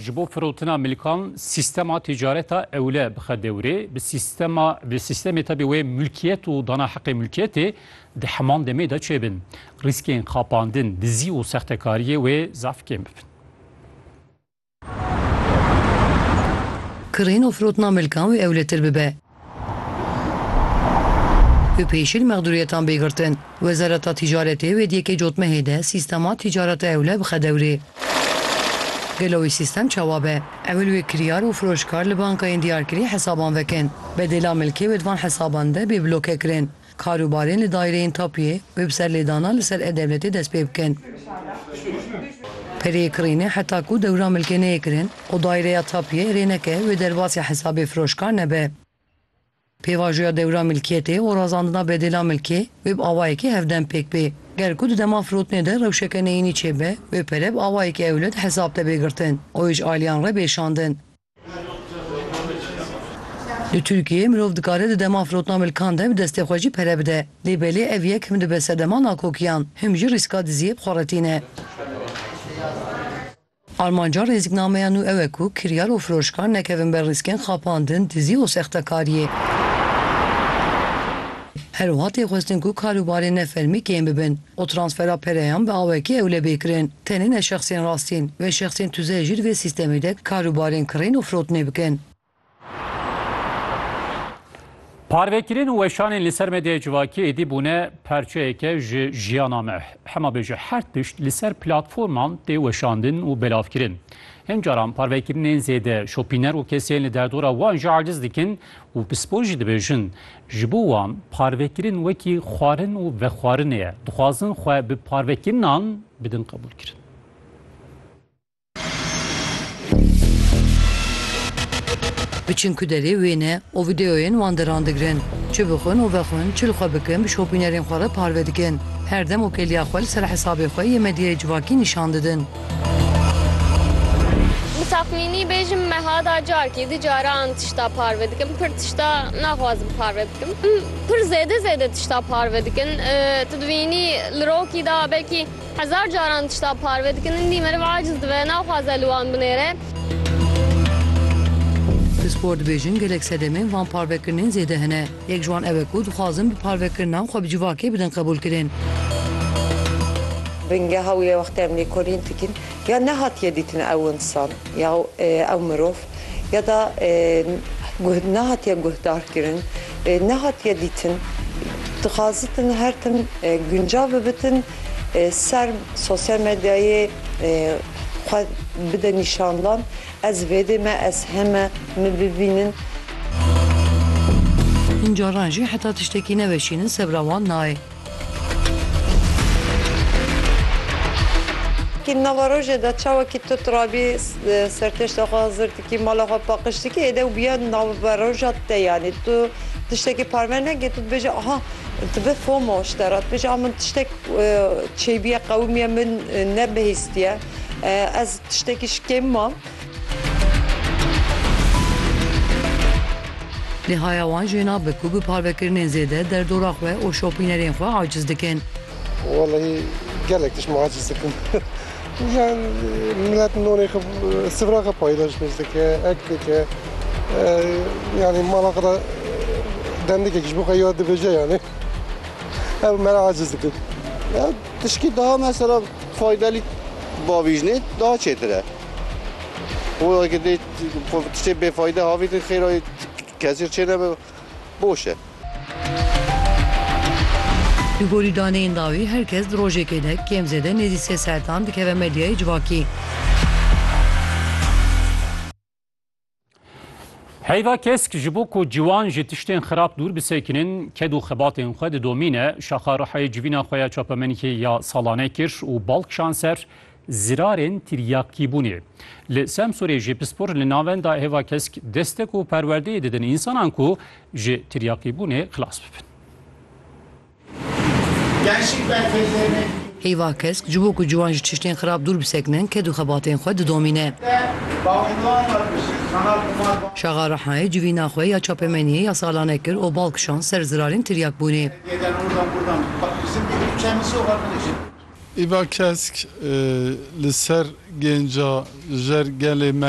Ji bo firotina milkan sîstema tîcareta ewle bixe dewrê, bi sîstema bi sîstemê tevî wê milkiyet û dana heqê milkiyetê di heman demê de çêbin, rîskên xapandin, dizî û sextekariyê wê zaf kêm bibin. Kirîn û firotina milkan wê ewletir bibe. Bi pêşîl mexdûriyetan bê girtin, Wezareta Tîcaretê wê di yekê cotmehê de sîstema tîcareta ewle bixe dewrê. Gelo wê sîstem çawa be? Ewil wê kiryar û firoşkar li bankayên diyarkirî hesaban vekin. Bedêla milkê wê di van hesaban de bê bloke kirin. Karûbarên li daîreyên tapûyê wê bi ser lêdanan li ser e-Dewletê dest pê bikin. Pereyê kirînê heta ku dewra milkê neyê kirin û daîreya tapûyê erê neke wê derbasî hesabê firoşkar nebe. Pêvajoya dewra milkiyetê û razandina bedêla milkê wê bi awayekî hevdem pêk bê. Ger ku di dema firotinê de rewşeke neyînî çêbe, wê pere bi awayekî ewle di hesab de bê girtin û êj aliyan re bê şandin. Li Tirkiyeyê mirov dikare di dema firotna milkan de bi destê xwe jî pere bide. Lê belê ev yek him dibe sedema nakokiyan, him jî rîska diziyê bi xwe re tîne. Armanca rêzîknameya nû ew e ku kiryar û firoşkar nekevin ber rîskên xapandin, dizî û sextekariyê. Her wiha tê xwestin ku karûbarên nefermî kêm bibin. Ku transfera pereyan bi awekî ewle bê kirin, tenê ne şexsên rastîn, vê şexsên tuzeh jî li vê sîstemê de kar û barên kirîn û firotinê bikin. Parvekirin û weşanên li ser medyaya civakî êdî bûne parçeyeke ji jiyana me. Hema bêje her tişt li ser platforman tê weşandin û belavkirin. Hin caran parvekirinên zêde şopîner û kesên li derdora wan jî aciz dikin û pispor jî dibêjin Ji bo wan parvekirin wekî xwarin û vexwarinê ye. Dixwazin xwe bi parvekirinan bidin qebûlkirin. Biçin ku derê wêne û vîdeoyên wan deran digirin. Çi bixwin û vexwin, çi li xwe bikin bi şopînerên xwe re parve dikin. Her dem û keliya xwe li ser hesabê xwe yê medyayê civakî nîşan didin. Bi texmînî bêjim meha da carkî du caran tişta parve dikim. Pir tişta naxwazim parve bikim. Em pir zêde zêde tişta parve dikin. Tu dibînî li rokî da belkî hezar caran tişta parve dikin. Hindî meriv aciz dibe, naxwaze li wan binêre. Pispor dibêjin gelek sedemên van parvekirinên zêde hene. Yek ji wan ew e ku dixwazin bi parvekirinan xwe bi civakê bidin qebûlkirin. Bingeha wî ye wextê em lêkolîn dikin ya nehatiye dîtin ew însan ya ew mirov ya da guh nehatiye guhdarkirin, nehatiye dîtin. Dixwazitin her tim guncav bibitin ser sosyal medyayê xwe bide nîşandan Ez vêdê me ez heme min bibînin. Hin caran jî heta tiştekî neveşînin sebra wan nayê. Kî nava rojê de çawa kî tu tirabî sertişta xwe hizir dikî mala xwe paqij dikî êde û biya nava roja te yanî tu tiştekî parve neke tu dibêje aha dibe fomo ji te re dibêje a min tiştek çêbîye qewimiye min nebihîstiye. Ez tiştekî ji kêm mam. Nihaya wan jê nabe ku bi parvekirinên zêde derdora xwe û şopînerên xwe aciz dikin. Wellahî gelek tişt min aciz dikin. Yan milet nonê xwe sifra xwe paydaşnij dike, ek dike. Yanî mala xwe de dendikek ji bo xwe ya dibêje yanî. Ew mera aciz dikin. Tişkî daha mesela faydelî bavîjnê daha çêtir e. Û eke dê tiştê bêfayde havîtin xêra kesî çênebe boş e. Li gorî daneyên dawî her kes di rojekê de kêm zêde nêzî sê saetan dikeve medyayê civakî. Heyva kesk ji bo ku ciwan ji tiştên xirab dûr bisekinin, ked û xebatên xwe didomîne. Şaxa Rihayê civîna xwe ya çapemenîkê ya salane kir û bal kişan ser zirarên tiryakîbûnê. Li Semsûrê jî pispor li navenda hêva kesk destek û perwerdeyê didin însanan ku ji tiryakîbûnê xilas bibin. Heyva kesk ji bo ku ciwan ji tiştên xirab dûr bisekinin ked û xebatên xwe didomîne. Şaxa Rehnayê civîna xwe ya çapemeniyê ya salane kir û bal kişand ser zirarên tiryakbûnê. Heyva kesk li ser gênca jer gelê me